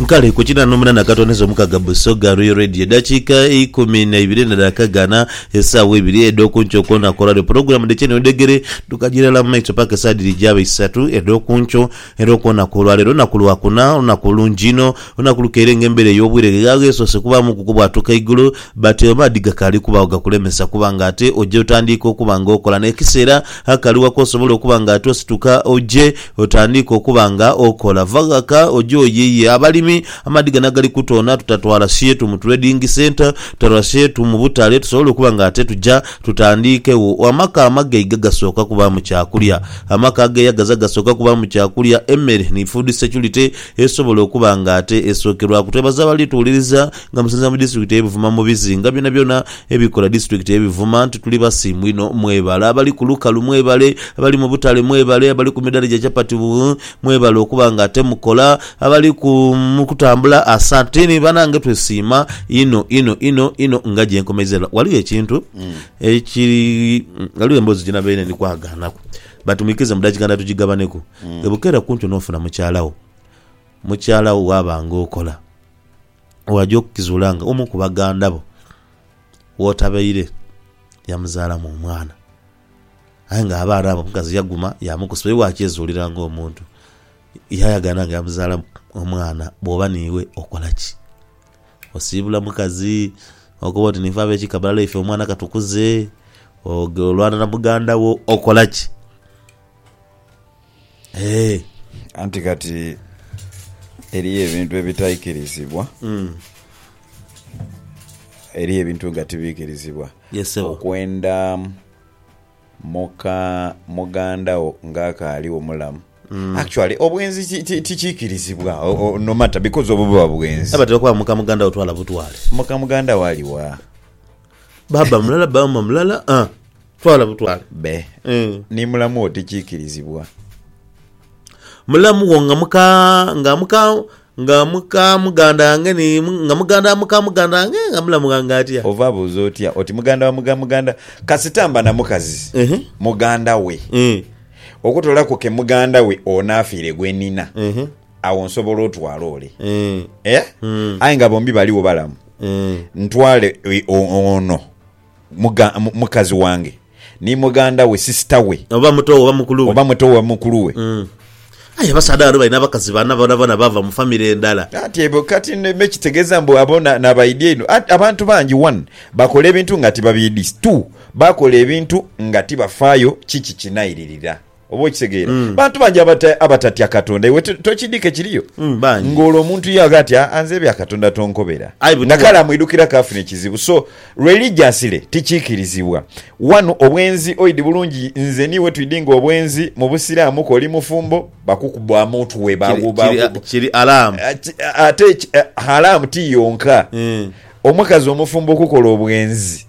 Kale ku kinana omunana akatondeza omukaga Busoga Royal Radio edakika eikumi na ibiri ne daka gana esaawa ibiri edhokunkyo kwonaku olwalero pulogulamu dhekye niwedhegere dhukajira irala mu maiso paka esaawa dhiri gyaba isatu edhokunkyo era okwonaku olwalero lunaku lwa kuna olunaku olungi inho olunaku lukeire nga embera eyobwire ghegha ghesoose kubaamu ku kubwatuka eigulu but amaadhi gakaali kubaagho gakulemesa kuba nga ate oja otandiika okuba nga okola nekiseera akali gha kwosobola okuba nga ate osituka oje Otandiike okuba nga okola. Va ghaka oje oyiiye abalimi amaadhi gano agali kutoona tutatwala sheetu mu trading centre, tutatwala sheetu mu butale tusobole okuba nga ate tuja tutandiike wo. Amaka amagaiga gasooka kubaamu kyakulya. Amaka ageeyagaza gasooka kubaamu kyakulya, emmere ni food security esobola okuba nga ate esookerwaku. Twebaza abali tuwuliriza nga musinziira mu disitulikiti eye Buvuma mu bizinga byonabyona. Ebikola District ye bivuma nti tuli basiimu inho mwebale. Abali ku lukalu mwebale, abali mu butale mwebale, abali ku midhala gya chapati buh mwebale okuba nga ate mukola, abali ku mu kutambula asantini banange twesiima inho inho inho inho nga gye nkomeiza era ghaligho ekintu ekiri ghaligho emboozi gye nabaire ndi kwagaanaku but mwikirize mu dakika ndala tugigabaneku. Ebukeera kunkyo n'ofuna mukyala wo, mukyala wo ghaba nga okola. waja okukizuula nga omu ku baganda bo w'otabaire yamuzaalamu omwana. Aye ng'abaana abo omukazi yaguma yaamukusa, oyo bwakyezuulira ng'omuntu yaayagana nga yamuzaalamu omwana, bw'oba niiwe okola ki? Osiibula mukazi? Okoba oti niife ab'ekika bulala ife omwana katukuze? Olwana na muganda wo? Okola ki? Anti kati eriyo ebintu ebitaikirizibwa, eriyo ebintu nga tibiikirizibwa. Okwenda muka muganda wo nga akaaligho mulamu, actually obwenzi tikiikirizibwa no matter because obwo buba bwenzi. Abatera okuba muka muganda wo twala butwale. Muka muganda wo ali wa? Baaba mulala, maama mulala. Twala butwale. Be. Eh. Ni mulamu wo tikiikirizibwa. Mulamu wo nga muka, nga muka, nga muka muganda wange ni mu- nga muganda wa muka muganda wange nga mulamu wange atya? Ova abuuza otya oti muganda wa muga muganda kasita mba na mukazi Ehe. muganda we Eh. okutolaku ke muganda we onaafiire gwe nina Ehe. awo nsobola otwala ole Eh. Eh? Mm. aye nga bombi baliwo balamu Eh. ntwale e- o- ono Muga, mu, mukazi wange, ni mughanda we, sisita we. Oba muto we oba mukulu we. Oba muto we oba mukulu we. Mm. Aye abasaadha bano balina abakazi bana bonabona bava mu famire ndala. Anti ebo kati me kitegeeza mbu abo na, nabaidhi einho. Anti abantu bangi, one, bakola ebintu nga tibabiidhi, two, bakola ebintu nga tibafaayo ki kikinailirira. Oba okitegeera mm. bantu bangi abata, abatatya katonda iwe tokidika ekiriyo mm, ng'olwo omuntu ye aga ati anze ah, ah, ebya katonda tonkobera nga kale amwidukira kaafuna ekizibu so religiously tikiikirizibwa wanu obwenzi oidi bulungi nze niiwe twidi nga obwenzi mu busiraamu koli mufumbo bakukubwa muntu we kiri alaamu ate halaamu ti yonka mm. omukazi omufumbo okukola obwenzi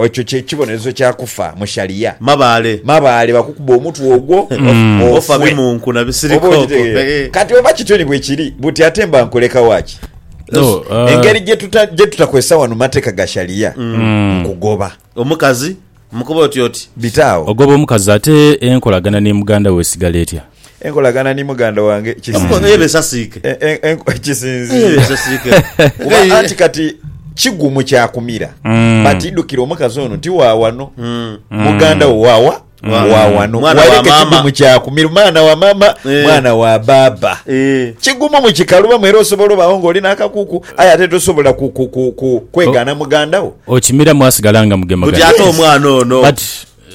Ekyo kye kibonerezo kya kufa mu Sharia. Mabaale. Mabaale bakukuba omutwe ogwo offe. Ofa bimunku na bisirikoko. Kati oba kityo ni bwe kiri, buti ate mba nkuleka wa ki? Engeri gye tutakozesa wano mateeka ga Sharia nkugoba. Omukazi? Mukoba oti oti. Bite agho? Ogoba omukazi ate enkolagana ni muganda wo esigala etya? Enkolagana ni muganda wange kisinzire. Kuba anti kati kigumu kya kumira but idhukira omukazi ono ti wa wano, muganda wo wa wa? Wa wano. Waireka ekigumu kya kumira mwana wa maama, mwana wa baaba. Kigumu mu kikalubamu era osobola obaagho ng'oli n'akakuku aye ate tosobola kwegaana muganda wo. Okimiramu asigala nga mugemagane.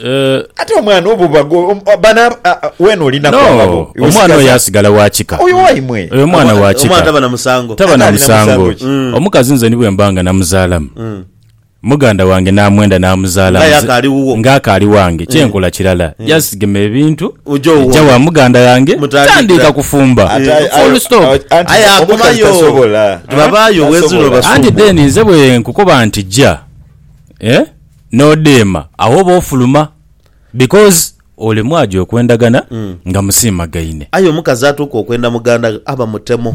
Eh, Ate omwana obo bago om- bana a- a- wena oli nako no, ngabo. Iwe omwana sigaza- oyo asigala wa kika. Oyo waimwe. Oyo omwana wa Omwana kika. taba na musango. Taba na Ate alina musango musango. ki? Mm. Omukazi nze ni bwe mba nga namuzaalamu. Mm. Muganda wange n'amwenda n'amuzaala Nga nze- yakaali wuwo. nga akaali wange. Kyenkola kirala. Just gema ebintu. Oja owona. Eja wa muganda yange. Mutandikira. Tandiika kufumba. Ate ayo- Full stop. ayo- anti Aye omukazi akomayo. tasobola. Tibabaayo, Tasobola. wezula obasumba. Anti then nze bwe nkukoba nti jja. Eh? nodheema agho oba ofuluma because olemwa gya okwendagana nga musiimagaine. Aye omukazi atuuka okwenda muganda ghe aba mutemu.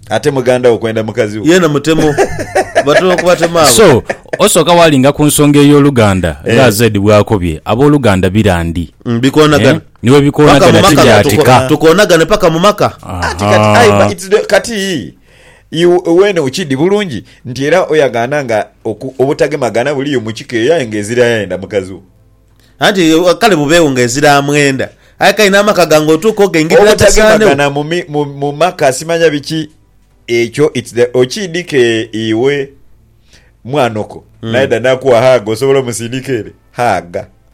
Ate muganda wo kwenda mukazi wo. Yeena mutemu. Batera okubatema abo. So, osooka waalinga ku nsonga ey'oluganda nga AZ bw'akobye, ab'oluganda bira ndi. Mm, bikoonagana. Eh, ni bwe Paka mu bikoonagana maka, tibyatika. tuko- tukoonagane paka mu maka. Ati kati, aye Aha. ba- it's the- kati Iwe eno okidi bulungi nti era oyagaana nga obutagemagana buliyo mu kika eyo aye nga ezira yayenda mukazi wo. Anti kale bubeegho nga ezira amwenda aye kale n'amaka gange otuuka ogaingirira tasaanegho. Obutagemagana mu maka simanya biki ekyo okidi ke iwe mwanoko naye da nakugha haaga osobola omusindika ere haaga.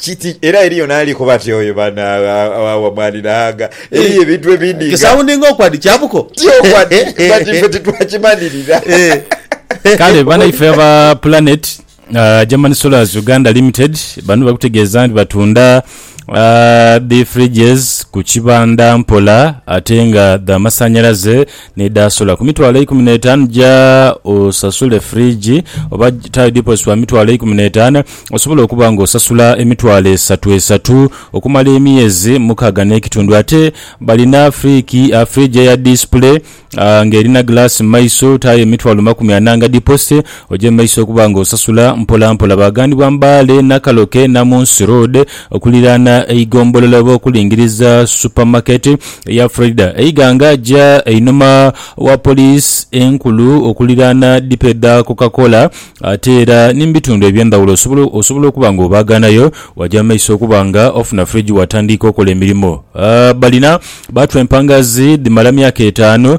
Kiti, era eriyo n'ali kuba ati, Oyo bano awa mwani na anga. Eriyo ebintu ebindi nga. Kisaundinga okwa nti kyabuko. Ti okwa nti, but ife titwakimanirira. Kale banaife aba Planet uh, German Solars Uganda Limited bano bali kutegeeza nti batunda uh, the fridges ku kibanda mpola ate nga dha masanyalaze N'edhaasula ku mitwalo eikumi n'etaanu ja osasule fridge oba taayo deposit wa mitwalo eikumi n'etaanu osobole okuba nga osasula emitwalo esatu esatu okumala emyezi mukaaga n'ekitundu. Ate balina friki, fridge eya display nga erina glass mu maiso taayo emitwalo makumi ana nga deposit. Oje mu maiso okuba nga osasula mpola mpola. Baaghanibwa Mbale, Nakaloke, Namunsi Road okuliraana eighombolola oba okulingiriza Supermarket eya Freda e Iganga. Ja einhuma wa Police enkulu okuliraana dipo edha Coca Cola ate era ni mu bitundu eby'endhaghulo osobola osobola okuba nga obaaghanayo. Waja mu maiso okuba nga ofuna fridge waatandiika okola emirimo. Balina baatu empanga zi dhimala myaka etaanu.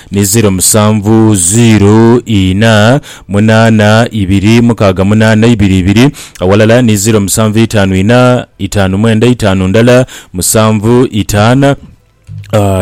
ni ziiro musanvu ziiro inha munaana ibiri mukaaga munaana ibiri ibiri awalala ni ziiro musanvu itaanu inha itaanu mwenda itaanu ndala musanvu itaana.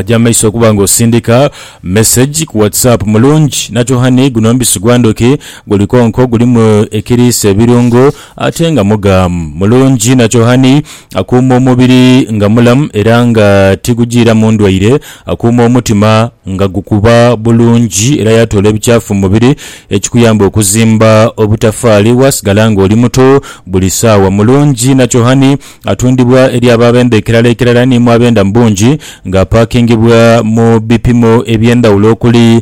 Gya mu maiso okuba nga osindika mesegi ku whatsapp mulungi nakyo hhani guno omubisi gwa ndhuki guli konko gulimu ekiriisa ebirungo ate nga mughamu mulungi nakyo hhani akuuma omubiri nga mulamu era nga tigujiiramu ndwaire Akuuma omutima nga gukuba bulungi era yaatoola ebikyafu mu mubiri ekikuyamba okuzimba obutafaali waasigala ng'oli muto buli saawa. Mulungi Nakyohani atundibwa eri abo ab'enda ekelal'ekerala ni mu ab'enda mu bungi ng'apaakingibwa mu bipimo eby'endhawulo okuli,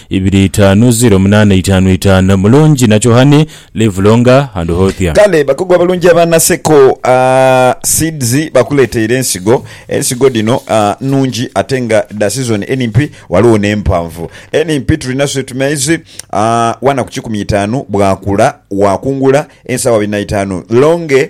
ibiri itaanu ziro munaana itaanu itaanu Mulungi na Chohane live longer and healthier. Kale bakugu abalungi aba Naseko Seeds bakuleteire ensigo. Ensigo dhino nnhungi ate nga dha sizoni enimpi ghaligho n'empanvu. Enimpi tulina sweet maize ghana ku kikumi itaanu bwakula wakungula ensawo abiri na itaanu, longe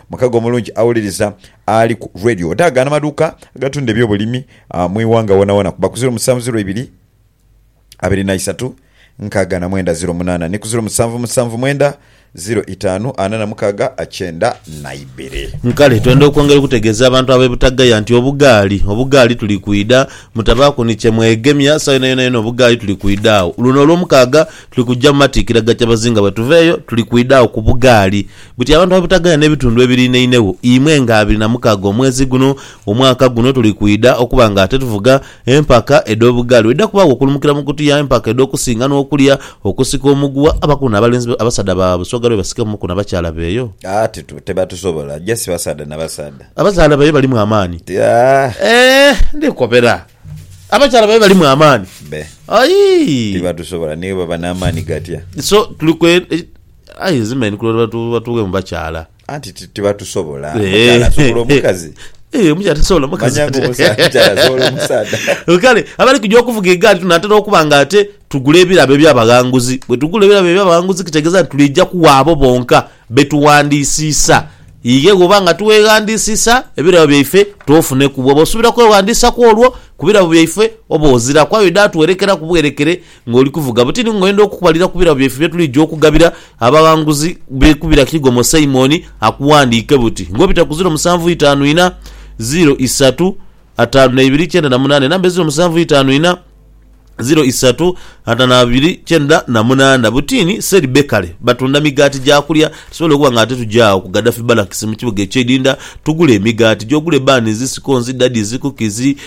Mukago omulungi awuliriza ali ku Radio odaaga n'amaduuka agatunda eby'obulimi mu ighanga wonawona kuba ku ziro musanvu ziro ibiri abiri na isatu nkaaga na mwenda ziro munaana ni ku ziro musanvu musanvu mwenda ziro itaanu ana na mukaaga kyenda na ibiri. Kale twenda okwongera okutegeeza abantu ab'e Butagaya nti obugaali, obugaali tuli kwidha, mutabaaku ni kye mwegemya, sawa yonayona yona obugaali tuli kwidha agho. Luno Olwomukaaga tuli kuja mu matiikira ga Kyabazinga bwe tuva eyo tuli kwidha agho ku bugaali Buti abantu abutagaya n'ebitundu ebiriinainegho, imwe nga abiri na mukaaga omwezi guno, omwaka guno tuli kwidha okuba nga ate tuvuga empaka edh'obugaali. Bwedhidha kubaagho okulumukira mu kutuya empaka edh'okusinga n'okulya, okusika omuguwa, abakulu n'abalenzi be, abasaadha ba Busoga be basike muku na bakyala beeyo. Aah titu, tebatusobola. Just basaadha na basaadha. Abazaala beeyo balimu amaani. Ti, aah. Eeh, ndi kukopera. Abakyala beeyo balimu amaani. Be. Ayii. Tibatusobola, ni bwebaba n'amaani gatya. So, tuli kwe, e. Aye nze manyi kulola batu batuwe mu bakyala. Anti ti- tibatusobola. Eh. Omukyala asobola omukazi. Eh, omukyala tasobola mukazi Manya ati. ng'omusa- omukyala asobola omusaadha. Kale abali kuja okuvuga egaali tunatera okuba nga ate tugula ebirabo eby'abaghanguzi. Bwe tugula ebirabo eby'abaghanguzi kitegeeza nti twidha kuwa abo bonka be tughandiisiisa. Ighe bw'oba nga tiweeghandiisiisa, ebirabo byaife toofuneku. Bw'oba osuubira kweghandiisa kw'olwo ku birabo byaife, oba oziraku. Aye oidha atuwerekeraku bwerekere. Ng'oli kuvuga butini ng'oyenda okukubalira ku birabo byaife bye tuliidha okugabira abaghanguzi b'e kubira Kigomo Simon akughandiike buti ng'obita ku ziro musanvu itaanu inha, ziro isatu, ataanu na ibiri kyenda na munaana. Enamba eziro musanvu itaanu inha, ziro isatu, ataanu na ibiri kyenda na munaana. Butini Seri Bakery batunda migaati gya kulya. Tusobola okuba nga ate tugya agho ku Gaddafi Barracks mu kibuga eky'eidinda tugule emigaati gy'ogule, bans, scones, daddies, cookies,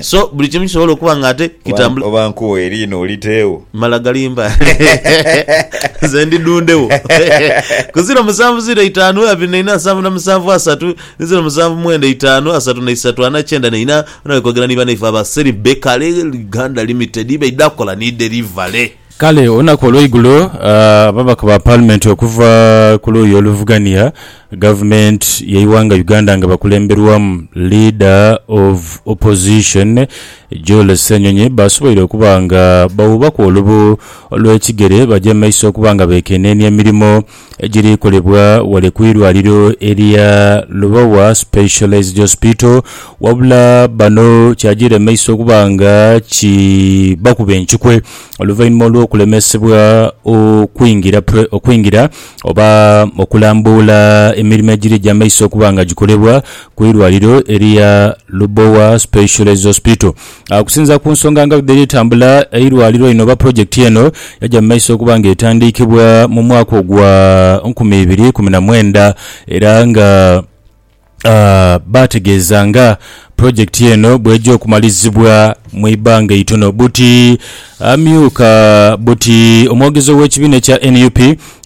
so buli kimu kisobola okuba nga ate kitambula oba nkuwa eriina oliteewo mala galimba nze ndi dundewo ku ziro musanvu ziro itaanu abiri na ina nsanvu na musanvu asatu ni ziro musanvu mwenda itaanu asatu na isatu ana kyenda na ina. Bano bali kwogera ni banaife aba Seribeka Uganda Limited ibaidha kola ni derivale. Kale olunaku olweigulo ababaka ba palimenti okuva ku luuyi oluvugania gavumenti yeighanga Uganda nga bakulemberwamu leader of opposition Joel Ssenyonyi basoboire okuba nga bawuubaku olubu olwekigere baje mumaiso okuba nga bekenenia emirimo egiri kolebwa ghale ku irwaliro erya Lubowa Specialised Hospital wabula bano kyagiremeisa okuba nga kibakuba enkikwe oluvainhuma olw'okulemesebwa okwingira okwingira oba okulambuula emirimo egiri egya maiso okuba nga gikolebwa ku irwaliro erya Lubowa Specialised Hospital. Okusinziira ku nsonga nga bwedhali etambula, eirwaliro lino oba pulojekiti eno yaja mu maiso okuba nga etandiikibwa mu mwaka ogwa nkumi ibiri ikumi na mwenda era nga baategeeza nga pulojekiti eno bw'eja okumalizibwa mu ibbanga eitono. Buti amyuka buti omwogezi ow'ekibiina ekya nup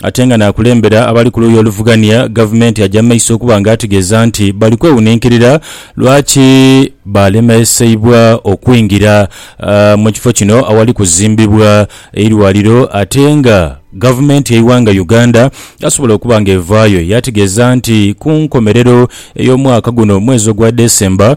ate nga naakulembera abali ku luuyi oluvugania gavumenti aja mu maiso okuba nga ategeeza nti bali kwewuninkirira lwaki baalemeseibwa okwingira mu kifo kino awali kuzimbibwa eirwaliro ate nga gavumenti y'eighanga Uganda yasobola okuba nga evaayo yaategeeza nti ku nkomerero ey'omwaka guno omwezi ogwa December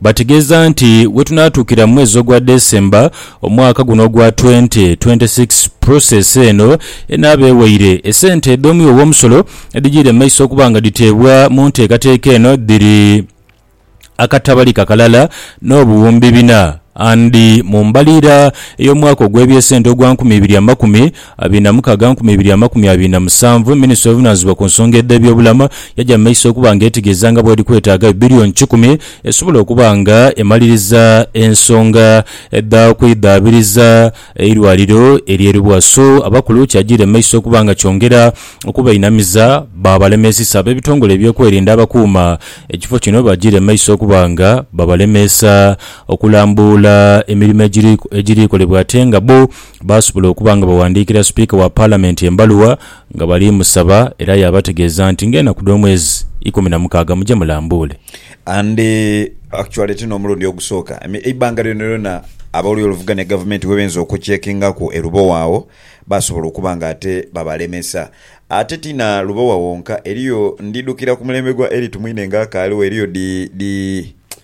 Bategeeza nti wetunaatuukira mu mwezi ogwa December omwaka guno ogwa 2026, process eno enaaba ewaire. Esente edh'omwiwo w'omusolo edhijiire mu maiso okuba nga dhiteebwa mu nteekateeka eno dhiri akatabali kakalala n'obuwumbi bina and mu mbaliira ey'omwaka ogw'ebyesente ogwa nkumi ibiri amakumi Abinamukaaga nkumi ibiri amakumi abiri na musanvu, Minisitule evunanizibwa ku nsonga edh'ebyobulamu yaja mu maiso okuba nga etegeeza nga bweri kwetaaga bbilioni kikumi esobola okuba nga emaliriza ensonga dha kwidhaabiriza eirwaliro ery'e Luwaso abakulu kyajiira mu maiso okuba nga kyongera okubainamiza baabalemeesisa ab'ebitongole eby'okwerinda abakuuma ekifo kino bajiire mu maiso okuba nga babalemeesa okulambuula emirimo egiri egirikolebwa ate nga bbo baasobola okuba nga baghandiikira Sipiika wa Palamenti embaluwa nga bali musaba era yaabategeeza nti ng'enaku dh'omwezi ikumi na mukaaga muje mulambuule. And actually ti n'omulundi ogusooka, eibanga lyonalyona ab'oludda oluvuganya gavumenti we benze okucheckingaku e Lubowa agho baasobola okuba nga ate babalemesa. Ate ti na Lubowa wonka, eriyo, ndidhukira ku mulembe gwa Elly Tumwine ng'akaaliwo, eriyo dhi, dhi.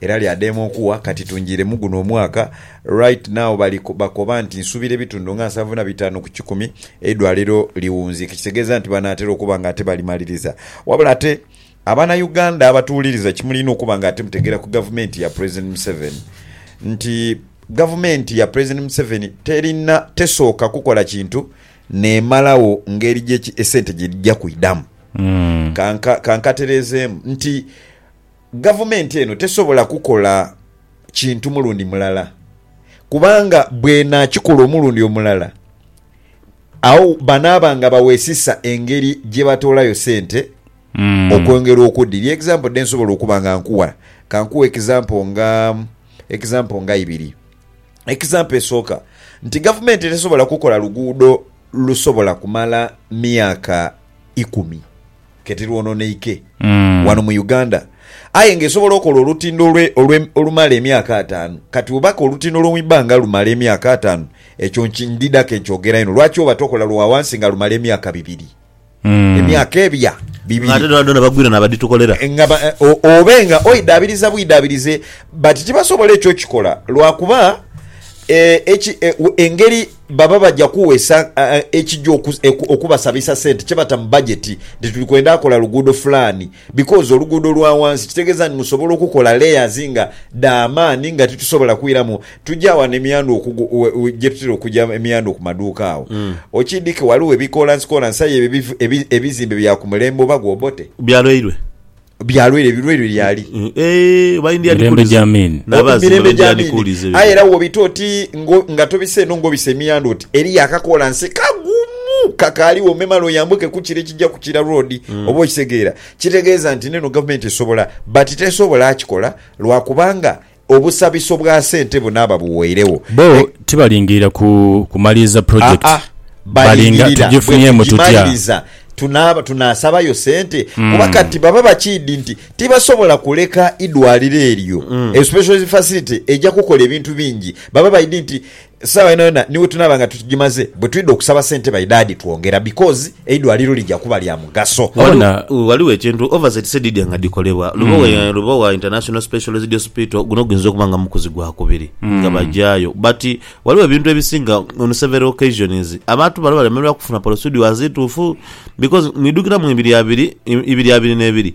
Era lyadheema okuwa kati tungiire mu guno omwaka right now bali bakoba nti nsuubira ebitundu nga nsanvu na bitaanu ku kikumi eidwaliro liwunziike ekitegeeza nti banaatera okuba nga ate balimaliriza wabula ate abana Uganda abatuwuliriza kyemulina okuba nga ate mutegeera ku gavumenti ya President Museveni nti gavumenti ya President Museveni terina tesooka kukola kintu nemalawo ngeri gye esente gyedhija kwidhamu kanka kankatereezeemu nti Gavumenti eno tesobola kukola kintu mulundi mulala kubanga bw'enaakikola omulundi omulala, agho banaaba nga baweesisa engeri gye batoolayo sente okwongera okudhirya. Egizampo dhe nsobola okuba nga nkuwa, ka nkuwe egizampo nga, egizampo nga ibiri. Egizampo esooka nti gavumenti tesobola kukola luguudo lusobola kumala myaka ikumi. Ke tilwononeike wano mu Uganda aye nga esobola okola olutindo olumala emyaka ataanu. Kati webaka olutindo lw'omu ibanga lumala emyaka ataanu, ekyo ndidha ke nkyogera inho. Lwaki oba tokola lwa wansi nga lumala emyaka bibiri? Emyaka ebya bibiri nga obe nga oidhaabiriza bwidhaabirize. But tibasobola ekyo okikola lwakuba engeri. Baba baja kuwesa ekija okubasabisa sente kyebata mu budget nti tuli kwenda akola luguudo fulani because oluguudo lwa wansi kitegeza nti musobola okukola layers nga dhamaani nga titusobola kwiramu tuja wano emiyandhu gyetutera okuja emiyandhu ku maduuka awo okidike waliwo ebikolansi kolansi aye ebizimbe bya kumulembe oba gwe Obote. Bya lwairwe. byalwaire ebilwaire lyali mirembe gya mini mirembe gya mini aye era wobita oti nga tobisa eno ngobisa emiyanda oti eriyo akakola nsi kagumu kakaliwo memale oyambuke kukira ekija kukira road mm. oba okitegeera kitegeeza nti neno gavumenti esobola but tesobola akikola lwakubanga Obusabiso bwa sente bunaaba buweiregho. Bo E. tibalingirira ku kumaliriza pulojekiti. Aa, Balinga balingirira bwe tugifunyeemu tutya? tugimaliriza tunaaba tunaasabayo sente? Kuba kati baba bakiidhi nti tibasobola kuleka idwaliro eryo, especially facility eja kukola ebintu bingi. Baba baidhi nti Esaawa yonayona ni wetunaaba nga tugimaze, bwetwidha okusaba sente by dad twongera because eidwaliro lija kuba lya mugaso. Waliwo waliwo ekintu Oversight said dhidya nga dhikolebwa Lubowa e Lubowa International Specialised Hospital, guno guyinza okuba nga mukuzi gwa kubiri nga bagyayo but waliwo ebintu ebisinga on several occasions abantu bano balemererwa kufuna procedures ntuufu because mwidhukira mu ibiri abiri ibiri abiri n'ebiri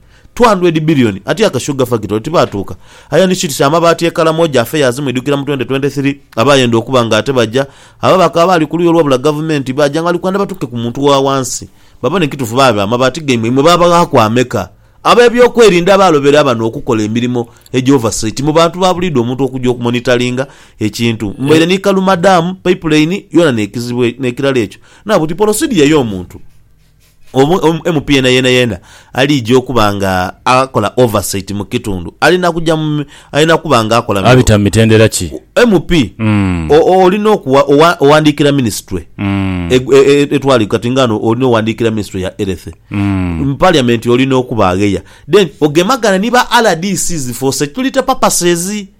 200 billion ati aka sugar factory tibaatuuka aye ni kiti ky'amabaati e Karamoja afe yaazimwidhukira mu 2023 aba ayenda okuba nga ate baja abo abakaba baali ku luuyi olwabula gavumenti baaja nga bali kwenda batuuke ku muntu wa wansi babone kituufu baabe amabaati gaimwe imwe baabaghaaku ameka? Ab'ebyokwerinda abaalobera bano okukola emirimo egya oversight mu bantu ba buliidho omuntu okuja okumonitalinga ekintu mbaire ni Kaluma Dam, Pipeline yona n'ekizibwe n'ekirala ekyo naabuti polosidiya y'omuntu. MP yeenayeena aliija okuba nga akola oversight mu kitundu alina kuja mu, alina kuba nga akola mu. Abita mu mitendera ki? MP olina okuwa, owandiikira minisitule etwala kati nga ghano olina owandiikira minisitule ya Health, mu Parliament olina okuba agheya then ogemagane ni ba rdcs for security purposes.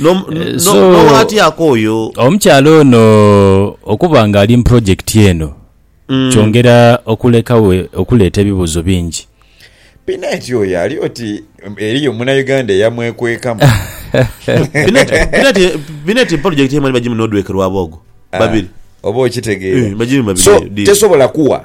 No, no, So- n'owaatyako oyo. Omukyala ono okuba nga ali mu pulojekiti eno Mm. kyongera okulekawo okuleeta ebibuuzo bingi. Pineti oyo ali oti um, eriyo munauganda eyamwekwekamu Pineti, Pineti, Pineti pulojekiti emwe ni bagimu n'odwekerwabo ogwo. Babiri. Ah, oba okitegeera Eh, bagimu babiri so eyo, deal. tesobola kuwa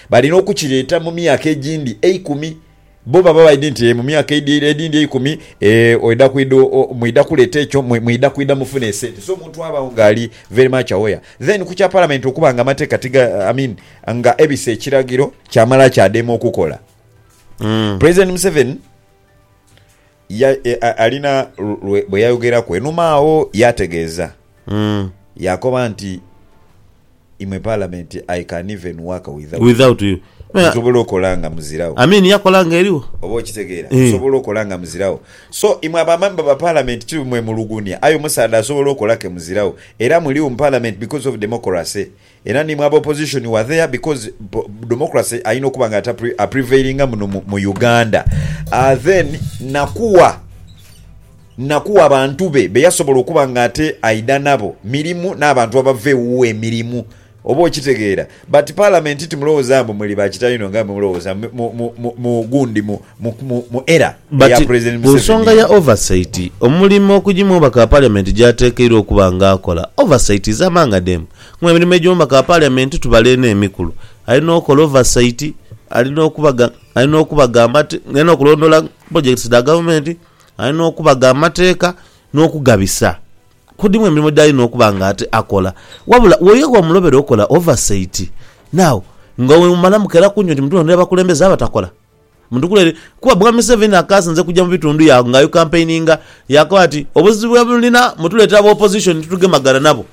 Balina okukireeta mu myaka egindi eikumi. Bo baba baidhi nti, Ee, mu myaka edindi eikumi, ee, oidha kwidha, mwidha kuleeta ekyo, mwidha kwidha mufune esente. So, omuntu abaagho nga ali very much aware. Then ku kya Palamenti okuba nga amateeka tiga, I mean, nga ebise ekiragiro, kyamala kyadema okukola. President Museveni Alina lwe bwe yayogeraku einhuma agho yaategeeza yaakoba nti, Imwe Palamenti, I can even work without you. Nsobola okola nga muziragho. Oba okitegeera? Nsobola okola nga muziragho. So, imwe abamemba ba Palamenti ti mwe mulugunia aye omusaadha asobola okola ke muziragho. Era muligho mu Palamenti because of democracy. Era ni mu aba opposition were there because democracy ayina okuba nga a prevailinga muno mu Uganda aah then nakuwa nakuwa bantu be beyasobola okuba nga ate aidha nabo mirimu nabantu abava ewuwe emirimu oba okitegeera but parliament timulowoza mbu muli ba kitalino nga bwemulowoza mu gundi mu era eya president Museveni eno. But kunsonga ya oversight omulimo okujimwobaka parliament gyatekeirwa okuba nga akola oversight is among them Mu emirimo egy'omu maka ga Parliament tubala eno emikulu, Alina okola oversight, alina okubaga alina okubaga amate alina okulondoola projects dha gavumenti, alina okubaga amateeka n'okugabisa. Ku dhimu emirimo gy'alina okuba nga ate akola. Wabula wo ye wamulobera okola oversight. Now nga bwe mumala mukeraku nti mutulondera abakulembeze abatakola? Mutukulele kuba Mwami Museveni akaasinze kuja mu bitundu yaagho nga ayukampeininga. Yaakoba ati, Obuzibu bwe mulina mutuleetera aba Opposition ni tugemagana nabo.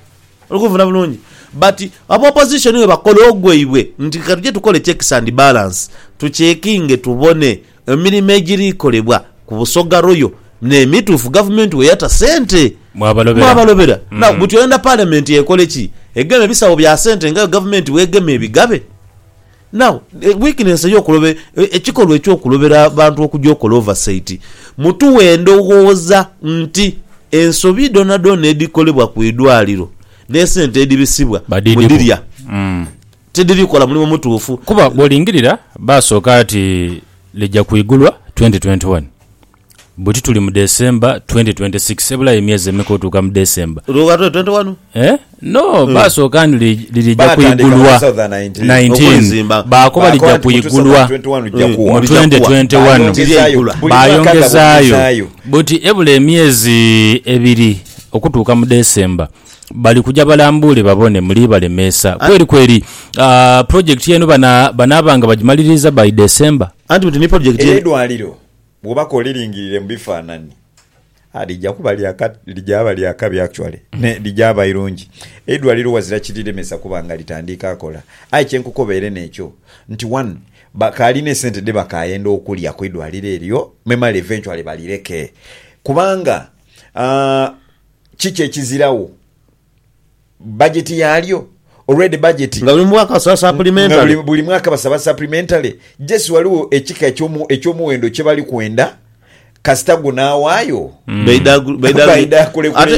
Oli kunfuna bulungi? But aba Opposition bwe bakola ogwaibwe nti ka tuje tukole checks and balance, tuchekinge tubone emirimo egiri kolebwa ku Busoga Royal n'emituufu Gavumenti we yata sente. Mwabalobera. Mwabalobera. Now buti oyenda Parliament ekole ki? Egeme bisawo bya sente nga yo Gavumenti bw'egema ebigabe? Now weakness eyo kulobe ekikolwa ekyo kulobera bantu okuja okola oversight mutuwe endoghoza nti ensobi dhonadhona edhikolebwa ku idwaliro ne sente edhibisibwa Badidhiku. mudhirya Mm. tidhiri kola mulimu mutuufu. Kuba bwolingirira baasooka ati lija kwigulwa 2021. Buti tuli mu December 2026 ebulayo emyezi emeka otuuka mu December? Luka twe 21. Eh? No, hmm. baasooka ni lirija kuigulwa 19 baakoba lija kuigulwa mu 2021 baayongezaayo buti ebula emyezi ebiri okutuuka mu December bali kuja balambuule babone muli balemeesa ah. kweri kweri ah, project eno banaabanga bagimaliriza by December anti buti ni project edwaliro Bwoba k'oliringirire mu bifaanani, a lija kuba lya ka, lija aba lya kabi actually, nae lija aba irungi. Eidwaliro ghazira kiriremesa kuba nga litandiika kola. Aye kye nkukobeere n'ekyo nti one, bakaali n'esente dhe bakaayenda okulya ku idwaliro eryo, memale eventually balireke. Kubanga, a, kiki ekiziragho? bajeti yaalyo, already bajeti. Nga buli mwaka basaba supplementary. Nga buli mwaka basaba supplementary. Just ghaligho ekika eky'omuwendo kye bali kwenda kasita gunaawayo baidha kulekula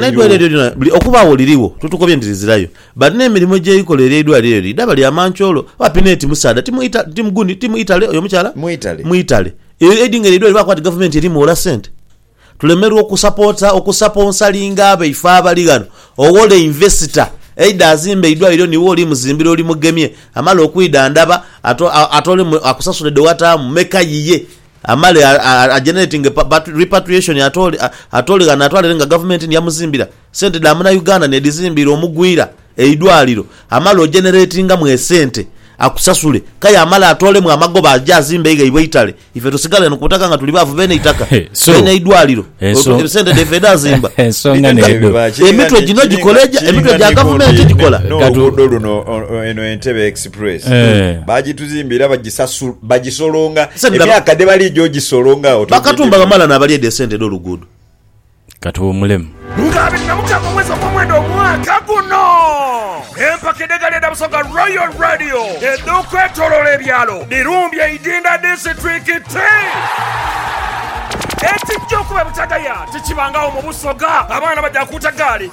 eidwaliro. Okuba agho lirigho totukobye nti lizirayo but n'emirimo egy'eikola ery'eidwaliro eryo idhaba lya mancoolo. Apina eti musaadha ti gundi ti mwitale oyo omukyala mwitale. Aidinga eryo eidwaliro bakoba nti gavumenti erimuwola sente. Tulemerwa okusapoota, okusaponsalinga abaife abali ghano. Owole invesita eidhe azimbe eidwaliro niiwe oli muzimbire oli mugemye. Amale okwidhandhaba atoolemu akusasule dhe wataamu meka yiye amale a generatinge repatriation atoole ghano atwale ere nga gavumenti ni ya muzimbira. Sente dha muna Uganda nedhizimbiira omugwira eidwaliro, amale ojeneretingamu esente akusasule kaya amale atoolemu amagoba aje azimbe eghaibwe eitale ife tusigale eno ku butaka nga tuli baavu beene eitaka beene eidwaliro sente dhaife edhazimba emitwe gino gikola egya emitwe gya gavumenti gikola. N'oluguudo luno eno Entebbe Express baagituzimbiira bagisolonga emyaka dhe baliija ogisolonga awo togidimu. Bakatumba bamala naabalya edho esente edh'oluguudo. ka tuwumulemu. Nga abiri na mukaaga omwezi ogw'omwenda omwaka guno, empaka edh'egaali edha Busoga Royal Radio edh'okwetoloola ebyalo dhirumbye Idinda disiturikiti. Ekijja okuba e Butagaya tikibangagho mu Busoga, abaana baja kuuta gaali